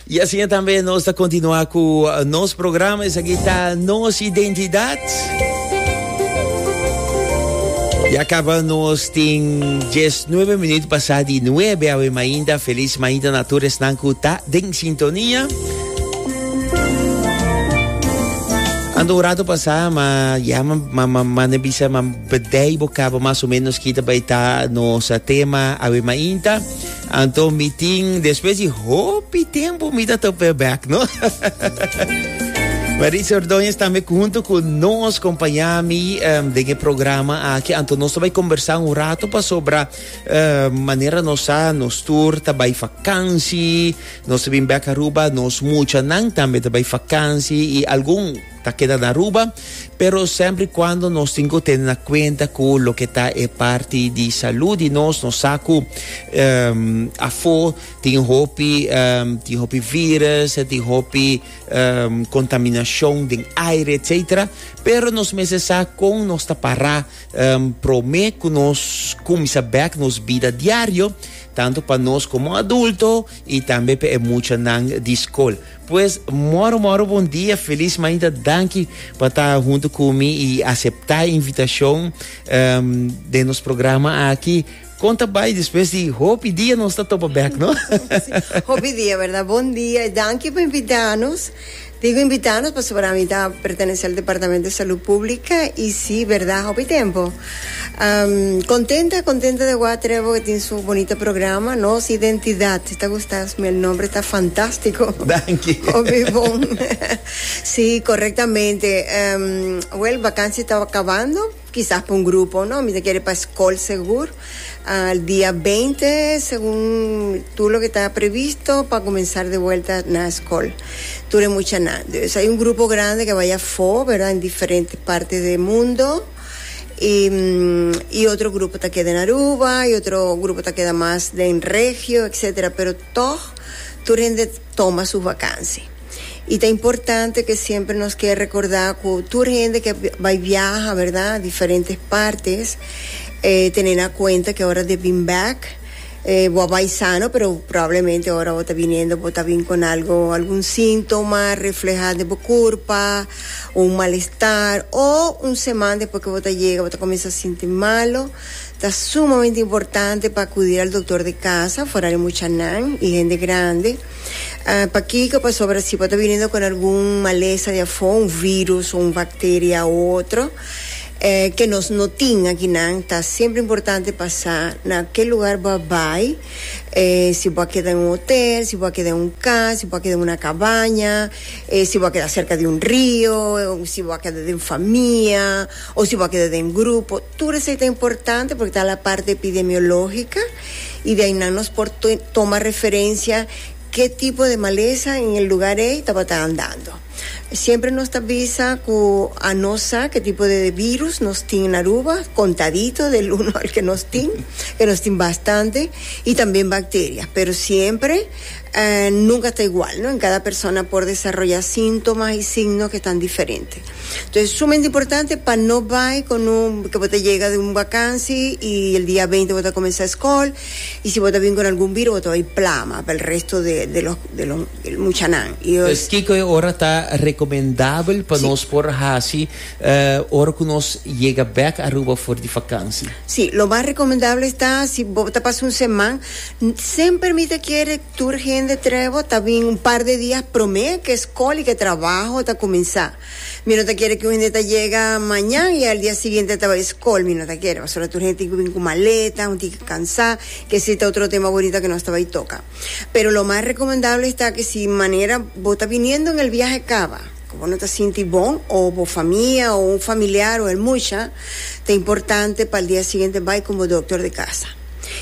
Y así también nos está continuando con nos programa. Es aquí está nos identidad. Y acabamos en 19 minutos pasado de 9 a mañana. Feliz mañana natura es nancuta den sintonía. Ando un rato pasado, ma ya ma ma ma ma ne bisa ma bedai bocaba más o menos kita baita nos tema a mañana. Anto mi tin, despues di hopi tempo mi ta top weer back, no? Maritza Ordóñez también junto con nos, compañami um, de el programa aquí. Anto nos está conversar un rato para sobre uh, manera nos a nos tour, está bij vakantie, nos está back Aruba, nos mucha nan también está bij vakantie y algún Ta keda na Aruba, pero semper y cuando nos tin cu tene na cuenta cu loke ta e parti di salud di nos, nos sa cu um, afo tin hopi, um, tin hopi virus, tin hopi um, contaminacion den aire, etcetera. Pero nos mester sa con nos ta para um, prome cu nos cumisa back nos vida diario, tanto pa nos como adulto y tambe pa e muchanan di school. Pues moro moro bon dia feliz mainta danki pa ta hunto cu mi y acepta e invitacion um den nos programa aki con ta bay despues di hopi dia nos ta topa bek no. hopi dia verdad bon dia y danki pa invitanos digo invitanos pasobra mi ta pertenece al departamento de salud publica y si verdad hopi tempo. Contenta contenta de wak Trevor e tin su bonita programa nos identidad ta gusta mi el nombre ta fantastico danki obe bon si correctamente well vakantie ta acabando kisas pa un grupo no mi ta kere pa school segur el dia beinti segun tur loke ta previsto pa comenzar de vuelta na school tur e muchanan hay un grupo grande ke baya for verda en diferente partes del mundo. y otro grupo ta keda en Aruba y otro grupo ta keda mas den regio etc. Pero tog tur hende toma su vakansi. Y ta importante ke siempre nos ke rekorda ku tur hende ke bai biaha berda a diferentes partes eh tene na kuenta ke ora de bin bèk. Bo a bai sano, pero probablemente ora bo ta biniendo bo ta bin con algo, algun síntoma refleha den bo curpa, un malestar o un seman despues que bo ta yega bo ta cuminsa sinti malo, ta sumamente importante pa acudir al doctor de casa for di muchanan y hende grande. Pakico? Pasobra si bo ta biniendo con algun malesa di afo, un virus o un bacteria u otro. E ke nos no tin akinan, ta siempre importante pa sa na ke lugar bo a bai, si bo a keda en un hotel, si bo a keda en un cas, si bo a keda en una cabaña, si bo a keda cerca di un rio, si bo a keda den famia o si bo a keda den grupo, tur esei ta importante porque ta la parte epidemiologica y de ayinan nos por toma referencia ke tipo de malesa en el lugar ei tabata andando. Siempre nos ta bisa cu a no sa ke tipo de virus nos tin na Aruba, contadito del uno al ke nos tin, ke nos tin bastante, y también bacteria. Pero siempre nunca ta igual, no? En cada persona por desaroya síntomas y signos ke tan diferente. Entonces es sumamente importante pa no bay con un, ke bo ta yega di un vakansi y el dia veinte bo ta comensa escol, y si bo ta bin con algun virus bo ta bay plama pa el resto de los, de los. El muchanan y yo. Pues kiko e ora ta recomendabel pa nos por haci ora cu nos yega bek Aruba for di vakansi? Si, lo mas recomendabel ta si bo ta pasa un seman, semper mi ta kere tur hende trei bo ta bin un par de dia prome ke scol y ke trabaho ta cuminsa. Mi no ta kere cu un hende ta yega mañan y al dia siguiente ta bay scol, mi no ta kere pasobra tur hende tin cu bin cu maleta, un tin cu cansa, ke si ta otro tema bonita ke nos ta bay toca. Pero lo mas recomendable esta ke si manera bo ta biniendo n'el biahe caba, cu bo no ta sinti bon o bo famia o un familiar o el mucha, ta importante pa'l dia siguiente bay con bo doctor de casa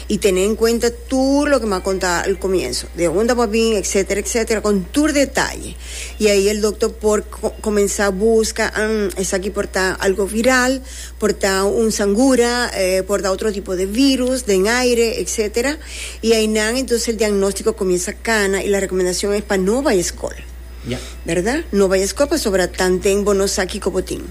y tene en cuenta tur loke m'a conta al comienzo, de unda bo a bin, etcetera, etcetera, con tur detaye y ahi el doctor por comenza busca, hmm, esaki por ta algo viral. Por ta un sangura, por ta otro tipo de virus den aire, etc. Y aynan entonces el diagnóstico comienza cana y la recomendacion es pa no bay escol. Ya. Verdad? No bay escol pasobra tanten bo no sa kico bo tin.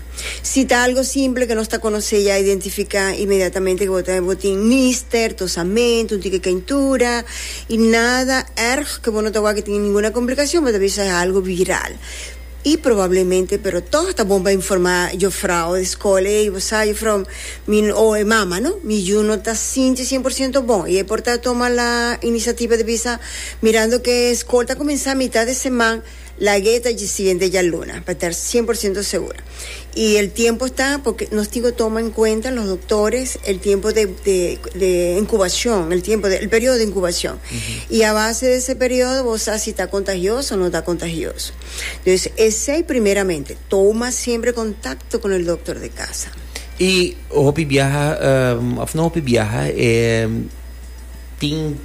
Si ta algo simple que nos ta conoce ya, identifica inmediatamente que bo ta, bo tin nister, tosamento, un tique caintura y nada erg que bo no ta wak tin ninguna complicacion, bo ta bisa es algo viral. I probablemente pero tog ta bon pa informa jofrau di skol ey, bo sa jofrau mi o e mama no, mi yu no ta sinti cien por ciento bon y ey por ta toma la iniciativa di bisa mirando ke skol ta comensa mitat di seman lagu'e ta dje siguiente djaluna pa tar cien por ciento segura. Y el tiempo ta porque nos tin cu toma en cuenta los doctores el tiempo de de de incubacion el tiempo de el periodo de incubacion y a base de ese periodo bo sa si ta contagioso o no ta contagioso dus esey primeramente toma siempre contacto con el doctor de casa. Y hopi biaha of no hopi biaha e tin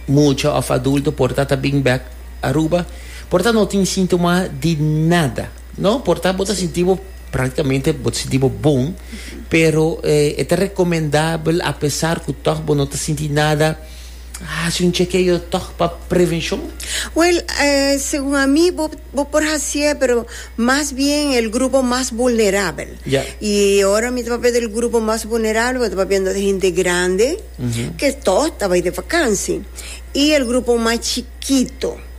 mucha of adulto por ta ta bing back Aruba por ta no tin sintoma di nada. No, por ta bo ta sinti bo práktikamente bo ta sinti bo bon, pero e ta rekomendabel apesar ku tòg bo no ta sinti nada, hasi un chekeo tòg pa prevenshon? Wèl, segun ami bo bo por hasié, pero mas bien el grupo mas vulnerabel. Ya. I ora mi ta papia del grupo mas vulnerabel bo ta papia di hende grande ke tò ta bai di vakansi i el grupo mas chikito.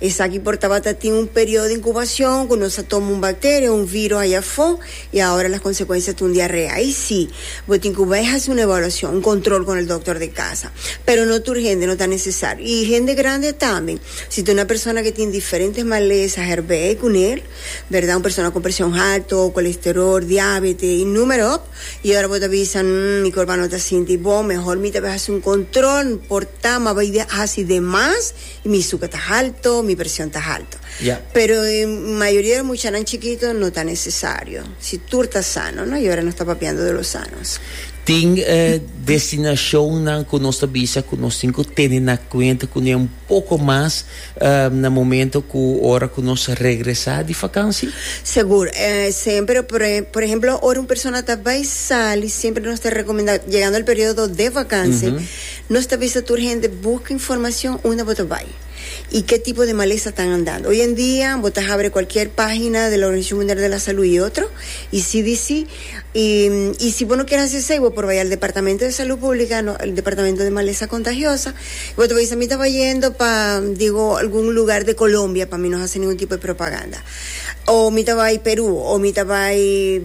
Esaki por tabata tin un periodo di incubacion cu nos a toma un bacteria o un virus aya afo y ahora las consecuencias ta un diarrea. Ahi si, bo tin cu bay haci un evaluacion, un control con el doctor di casa. Pero no tur hende no ta necesario y hende grande tambe. Si ta una persona que tin diferentes maleza herbehe cu nel, berdad, un persona con presion halto, colesterol, diabete y numero op, y ora bo ta bisa, Umm, mi corba no ta sinti bon, mehor mi ta bay haci un control, por ta, ma bay haci de mas Mi suka ta halto, mi presion ta halto. Ya. Pero e mayoria di muchanan chikito no ta nesesario, si tur ta sano, no? Y ora nos ta papiando di lo sanos. Tin destinacionnan cu nos ta bisa cu nos tin cu tene na cuenta cu n'e un poco mas na momento cu ora cu nos regresa di vakantie? Segur. Semper, por ehemplo, ora un persona ta bay sali, semper nos ta recomenda, yegando el periodo de vakantie, Nos ta bisa tur hende buka informacion unda bo ta bay y ke tipo de malesa tan andando. Hoy en dia bo ta habre cualkier pagina de la Organisacion Mundial de la Salud y otro y CDC y y si bo no kier haci esey bo por bay al Departamento de Salud Publica no el Departamento de Malesa Contagiosa y bo ta bisa mi taba yendo pa digo algun lugar de Colombia pa mi no haci ningun tipo de propaganda o mi ta bay Peru o mi ta bay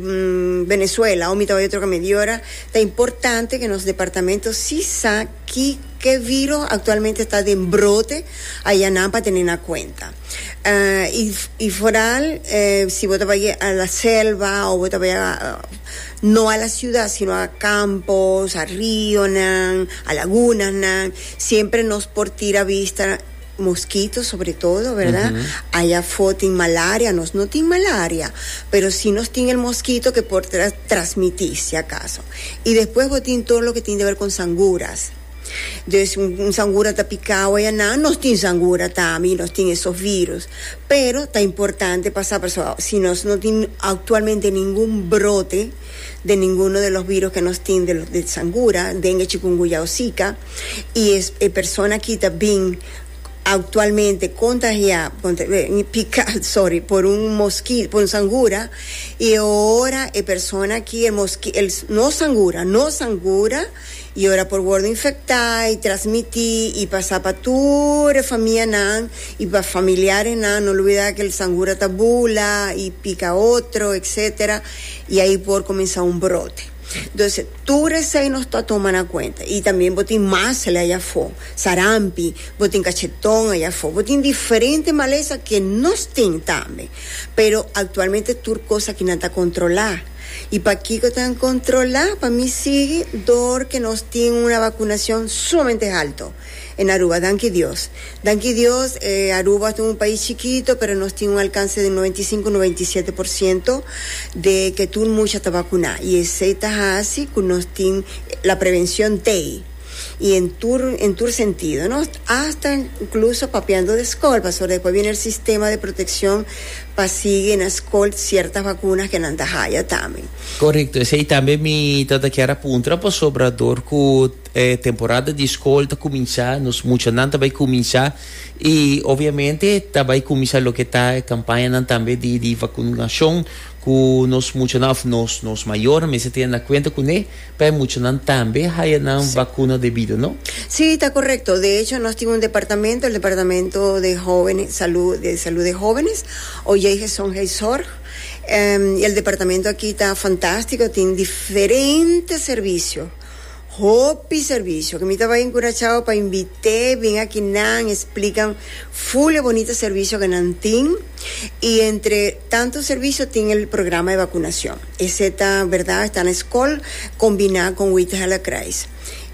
Venezuela o mi ta bay otro kant. Di ora. Ta importante cu nos departamento si sa ki ke viro actualmente ta den brote aya nan pa tene na cuenta. Y foral si bo ta bay a la selva o bo ta bay no a la ciudad sino a campos, a rionan, a lagunanan siempre nos por tira vista. Moskito sobre todo verda ayafo tin malaria nos no tin malaria pero si nos tin el moskito ke por trasmiti si akaso y despues bo tin todo loke tin dever kon sanguras des un sangura ta pika awe ya nan nos tin sangura tambe y nos tin esos virus pero ta importante pa sa pasobra si nos no tin actualmente ningun brote. den ninguno de los virus ke nos tin de de sangura, dengue, chikungunya o sika, i e e persona aki ta bin aktualmente kontahiá, piká, sorry, por un moski por un sangura i e ora e persona aki e moski el nos sangura nos sangura. I ora por wordo infectá i trasmití i pasá pa tur e famianan i pa familiarenan, no olbidá ke el sangura ta bula i pika otro etc. I ahi por komensá un brote. Entonse tur esei nos ta toma na kuenta. I tambe bo tin masle ayi afó, sarampi, bo tin kacheton ayi afó, bo tin diferente malesa ke nos tin tambe. Pero aktualmente tur kos aki nan ta kontrolá. I pakiko ta un kontrolá pa mi sigui dor ke nos tin una vakunacion sumamente halto en Aruba? Danki Dios. Danki Dios e Aruba ta un pais chikito pero nos tin un alkanse di noventa i sinku, noventa i siete por siento de ke tur mucha ta vakuná i esei ta hasi ku nos tin la prevension tei i en tur en tur sentido no, asta inkluso papiando de skol pasobra despues bini el sistema de protekshon. Pa sigui na scol cierta vacuna que nan ta haya tambe. Correcto, esey tambe mi ta ta kier a puntra pasobra door cu e temporada di scol ta cuminsa, nos muchanan ta bay cuminsa y obviamente ta bay cuminsa loke ta e campañanan tambe di di vacunacion cu nos muchanan of nos nos mayornan mester tene na cuenta cune. Pa e muchanan tambe haya nan vacuna debido, no? Sí, ta correcto. De hecho, nos tin un departamento, el departamento de hovenes, salud, de salud de hovenes, o yei gezondheidszorg, y el departamento aki ta fantastico, tin diferente servicio, hopi servicio, que mi ta bay in Curaçao pa invite bin aki nan, explican full e bonita servicio que nan tin, y entre tanto servicio tin el programa de vacunacion. Esei ta berdad, esta na escol combina con Withella Kreis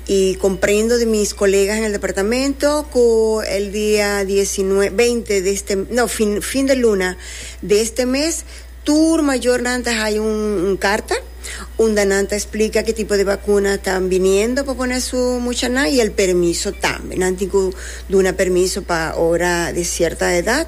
y comprendo di mis colegas en el departamento cu el dia diesinue, beinti di este, no, fin, fin de luna di este mes tur mayornan ta haya un, un carta unda nan ta explica ki tipo di vacuna ta biniendo pa pone su muchanan y el permiso tambe, nan tin cu duna permiso pa ora di cierta edad.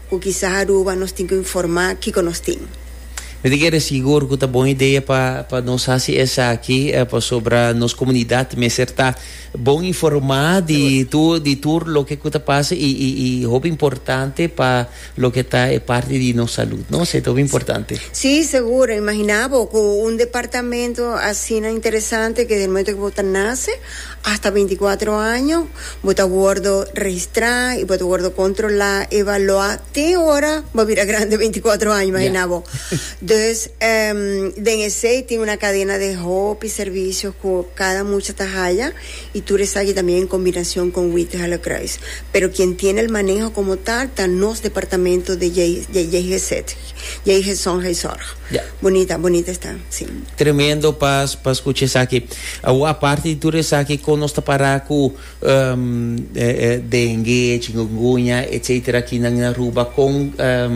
Cu kisas Aruba nos tin cu informa kico nos tin. Mi ta kere sigur cu ta bon idea pa pa nos haci esaki pasobra nos comunidad mester ta bon informa di tur di tur loke cu ta pasa y y y hopi importante pa loke ta e parti di nos salud no esey ta hopi importante. Sí, seguro. Imagina bo cu un departamento asina interesante que den momento cu bo ta nace Hasta binticuatro año bo ta wordo registrá i bo ta wordo kontrolá, evaluá te ora bo a bira grandi binticuatro año, imaginá bo. Dus, den esei tin una kadena di hopi servisio ku kada mucha ta haya i tur esaki también en kombinasion kon Witte-Hellekruis. Pero kien tiene el maneho komo tal ta nos departamento di JGZ. Jay Hezon Jay Zorg. Ya. Bonita, bonita esta, si. Tremendo pa pa scucha esaki. Awo aparte di tur esaki con nos ta para cu um eh eh dengue, chikungunya etcetera aki nan in Aruba con um